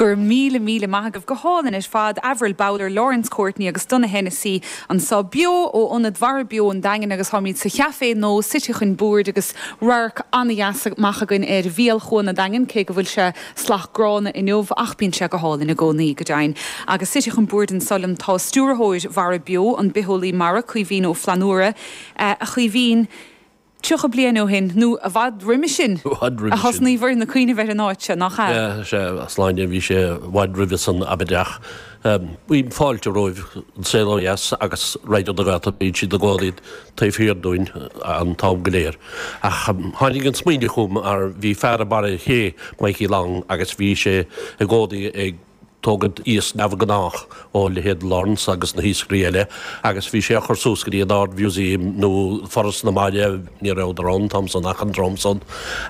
Go raibh míle míle maith agaibh go hálainn ar fad, Avril Bowler, Laurence Courtney agus Donagh Hennessy anseo beo ó Ionad Mhara Beo an Daingin agus táimid sa chaifé anois suite chun boird agus radharc an-deas amach againn ar bhéal Chuan an Daingin cé go bhfuil sé salach gránna inniu ach bíonn sé go hálainn i gcónaí go deimhin agus suite chun boird anseo liom tá Stiúrthóir Mhara Beo, an bitheolaí mara, Caoimhín Ó Flannúra. A Chaoimhín. 30 bliain ó shin, nó i bhfad roimhe sin, a thosnaíobhair ag cuimhneamh ar an áit seo, nach ea? Sea, a Shláine, bhí sé i bhfad roimhe san i bhfad ach cuirim fáilte romhaibh, An Saol ó Dheas agus Raidió na Gaeltachta, bíonn siad i gcónaí taobh thiar dúinn an t-am go léir. Ach tháinig an smaoineamh chugam mar bhí fear i mBarr an Ché, Mikey Long, agus bhí sé i gcónaí ag. tógaint iasc neamhghnách ó leithéid Lawrence agus na hiascairí eile agus bhí sé á chur suas go dtí an Ard-Mhúsaem nó Foras na Mara, ní rabhadar ann an t-am san ach an dream san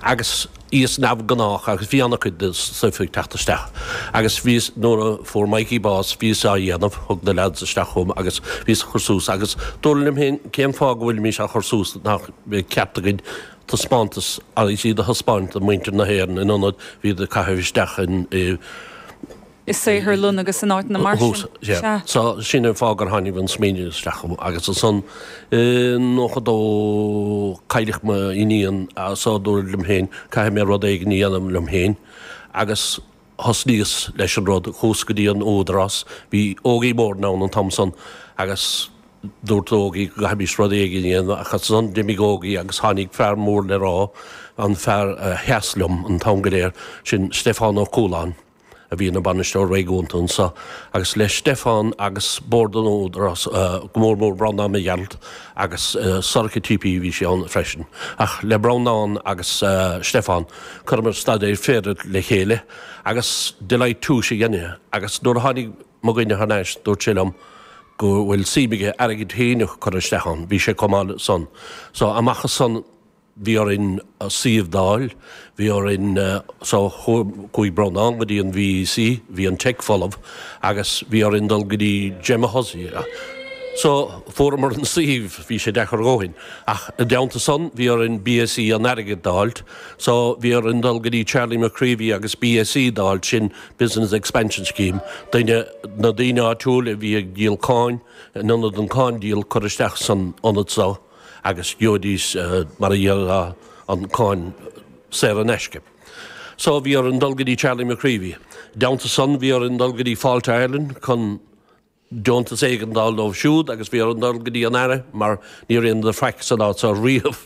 agus iasc neamhghnách agus bhí ana cuid de stuif ag teacht isteach agus bhíos, nuair a fuair Mikey bás bhíos á dhéanamh, thug na leaids isteach chugam agus bhíos á chur suas agus dúrt liom féin cén fáth go bhfuilimís á chur suas nach bhfuil ceart againn taispeántas agus iad a thaispeáint do mhuintir na hÉireann in ionad iad a chaitheamh isteach i saotharlann agus in áiteanna mar sin. Thuas sea. so sin an fáth gur tháinig an smaoineamh isteach chugam agus ansan i nócha dó cailleadh m'iníon so dúrt liom féin caithfidh mé rud éigin a dhéanamh liom féin agus. thosnaíos leis an rud, chuas go dtí an Údarás, bhí Ógie Moran ann an t-am san agus dúirt Ógie go gcaithfimis rud éigin a dhéanamh ach ansan d'imigh Ógie agus tháinig fear mór le rá, an fear a sheas liom an t-am go léir, sin Stiofán Ó Cúláin a bhí ina Bhainisteoir Réigiúnta anseo agus le Stiofán agus Bord an Údarás, go mór mór Breandán Mac Gearailt, agus is dócha TP, bhí sé ann freisin, ach le Breandán agus Stiofán, chuireamar staidéar féidir le chéile agus Deloitte Touche a dhein é agus nuair a tháinig mo dhuine thar n-ais dúirt sé liom go bhfuil suim aige airgead féin a chur isteach ann, bhí sé chomh maith le san. So amach as san. bhí orainn suíomh d'fháil, bhí orainn so chuaigh Breandán go dtí an VEC, bhí an Teic folamh agus bhí orainn dul go dtí Gemma Hussey so fuaramar an suíomh, bhí sé deacair a dhóthain ach i dteannta san bhí orainn BES an airgid d'fháilt so bhí orainn dul go dtí Charlie McCreevy agus BES d'fháilt, sin Business Expansion Scheme, duine, na daoine áitiúil a bhí ag díol cáin, in ionad an cáin díol, cur isteach san ionad so. agus gheobhaidís mar a déarfá an cáin saor in aisce. So bhí orainn dul go dtí Charlie McCreevy. Deontas san bhí orainn dul go dtí Fáilte Ireland chun deontas éigin a fháil dóibh siúd agus bhí orainn dul go dtí an Aire mar ní raibh aon faic san áit so riamh.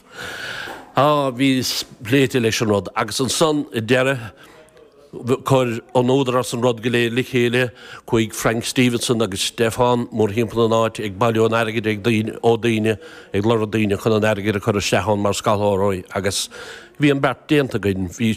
Á bhí pléite leis an rud. Agus ansan i deireadh Chuir an Údarás an rud go léir le chéile, chuaigh Frank Stevenson agus Stefan mórthimpeall na háite ag bailiú an airgid ag daoine, ó daoine, ag lorg daoine chun an airgead a chur isteach ann mar scairshealbhóirí agus bhí an beart déanta againn. Bhí.